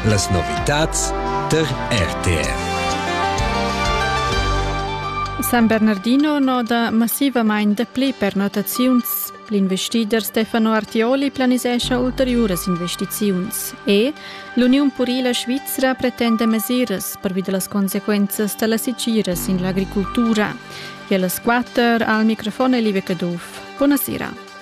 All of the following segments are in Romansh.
Las novitads tar RTV. San Bernardino noda massivamain dapli pernottaziuns. L'investider Stefano Artioli planisescha ulteriuras investiziuns e l'Uniun purila svizra pretenda mesiras pervi da las consequenzas da la sitgira sin l'agricultura. E a las quatter al microfon è Live Caduff. Buonasera.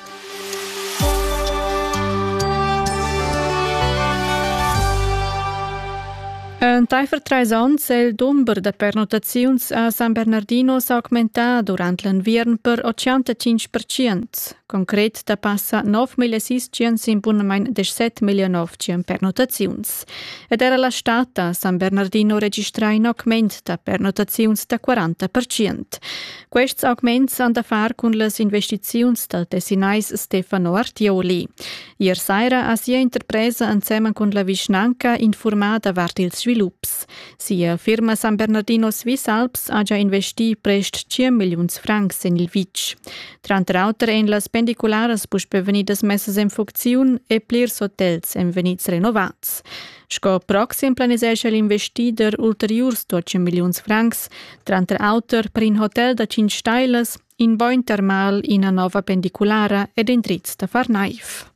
Entaifer trais onns è il dumber da pernottaziuns a San Bernardino s'augmentà durant l'enviern per 85 percent. Concret da passa 9.600 sin bunamain 17.900 pernottaziuns. Ed era la stad a San Bernardino registra in augment da pernottaziuns da 40 percent. Quests augments han da far cun las investiziuns dal tessinais Stefano Artioli. Ier saira ha sia interpresa ensemen cun la vischnanca infurmà davart ils svilups. Sia firma San Bernardino Swiss Alps ha già investì prest 5 milliuns francs en il vitg. Tranter auter èn las pendicularas puspè vegnidas messas en funcziun e plirs hotels èn vegnids renovads. Sco proxim planisescha l'investider ulteriurs 12 milliuns francs, tranter auter per in hotel da 5 stailas, in bogn termal, ina nova pendiculara ed in triz da far naiv.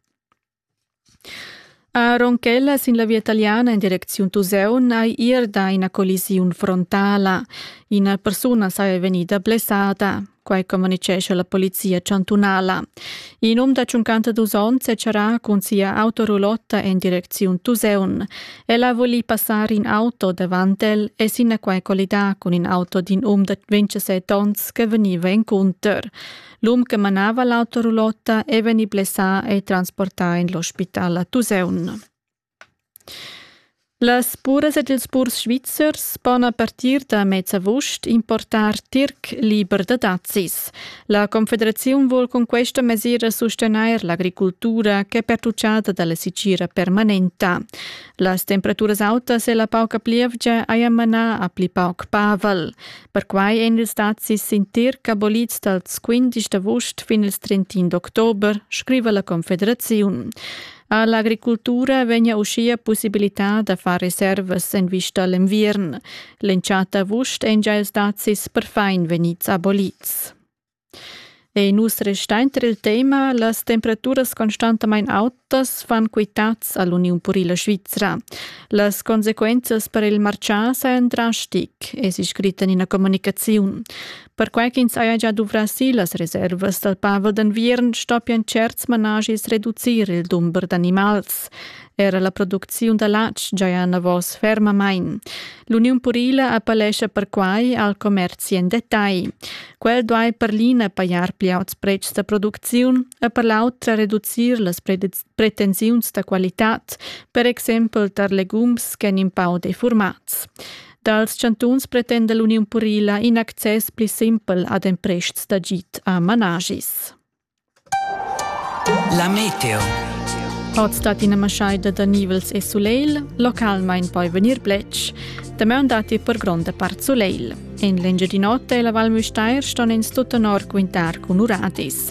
A Ronchella sin la via italiana in direcziun Tuseun hai ir da ina collisiun frontala. Ina persuna saja vegnida blessada. Quai communicescha la polizia chantunala. In um da 52 onns è charà cun sia autorulotta en direcziun Tuseun. El ha volì passar in auto davant el e sinaquai collidà cun in auto d'in um da 27 onns che vegniva encunter. L'um che manava l'autorulotta è vegnì blessà e transportà en l'ospital a Tuseun. Las puras ed ils purs svizzers pon a partir da mez avust importar tirc liber da dazis. La Confederaziun vul cun questa mesira sustegnair l'agricultura ch'è pertutgada da la sitgira permanenta. Las temperaturas autas e la pauca plievgia hajan manà a pli pauc pavel. Perquai èn ils dazis sin tirc abolids dals 15 d'avust fin ils 31 d'october, scriva la Confederaziun. All'agricultura vegna uschia pussibilità da far reservas en vista l'enviern. L'entschatta avust ein gia stazis perfein vegnids abolits. E nus restain tra il tema las temperaturas constantamain autas fan quitads all'Uniun Purila Svizra. Las consequences per il marcià sajan drastic, es scrit in ina comunicaziun. Perquai ch'ins haja gia duvrà si las reservas dal pavel d'enviern stoppian tscherts manaschis reducir il dumber d'animals. Era la producziun da latg giaja enavos fermamain. L'Uniun purila appellescha perquai al commerzi en detagl. Quel duai per l'ina pajar pli auts pretschs da producziun e per l'autra reducir las pretensiuns da qualitad, per exempel tar legums ch'èn in pau defurmads. Dals chantuns pretenda l'Uniun purila in access pli simpel ad emprests d'agid a managis. La meteo. Oz dat ina maschaida da nivels e sulegl, localmain poi vegnir bletsch. Damaun datti per gronda part sulegl. En l'Engiadin'Ota e la Val Müstair ston ins tut tenor quintar cun uradis.